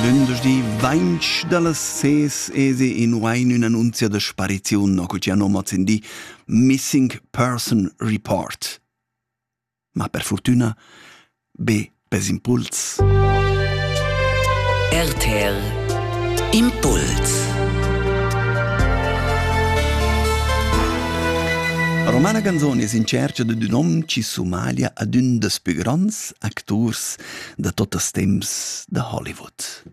Lündeschdi vainch da las ses ese in wain ün'annunzia da spariziun no cul chi hanno mazzendi Missing Person Report. Ma per fortüna be pes impuls. RTL Impuls Romana Ganzoni es in cerca da ün hom chi sumalia ad ün deus pü gronds acturs da tuttas temps da Hollywood.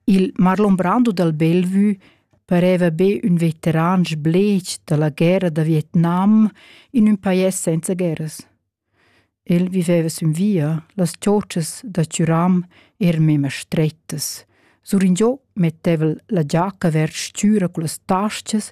Il Marlon Brando dal Bellevue pareva be ün veteran sblech da la guerra da Vietnam in ün pajais senza guerras. El viveva sün via, las chorchas da Turam eran mema strettas. Suringiò metteva la giacca vers stüra cullas tascas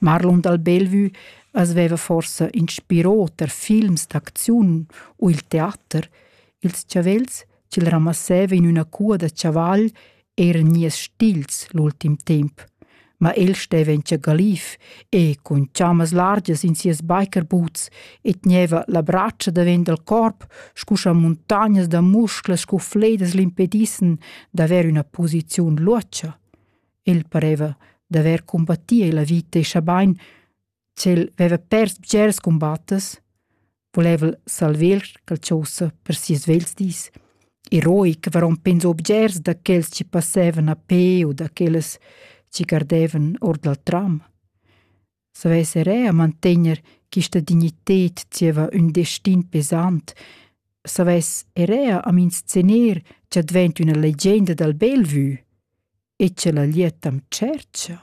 Marlon dal Bellevue as veva forsa inspirò tar films d'acziun u il teater, ils chavels ch'el ramasseva in üna cua da chaval eiran gnieus stils l'ultim temp, ma el steva in tschagaliv e cun chammas largias in sias biker-boots e tgneva la bratscha davent dal corp scu scha muntagnas da musclas scu fledas l'impedissen d'avair üna posiziun luotscha. El pareva d'haver combattì la vita e schabain ch'el veva pers bgers cumbattas, voleva el salver Calchosa per sias vegls dis. Eroi che varon penso bgers da quels che passevan a pe u da quellas che gardevan or dal tram. savess er eir mantegner quista dignited zieva ün destin pesant, savess er eir am inscener cha dvaint üna legenda dal bel vü e cha la liet am tschercha.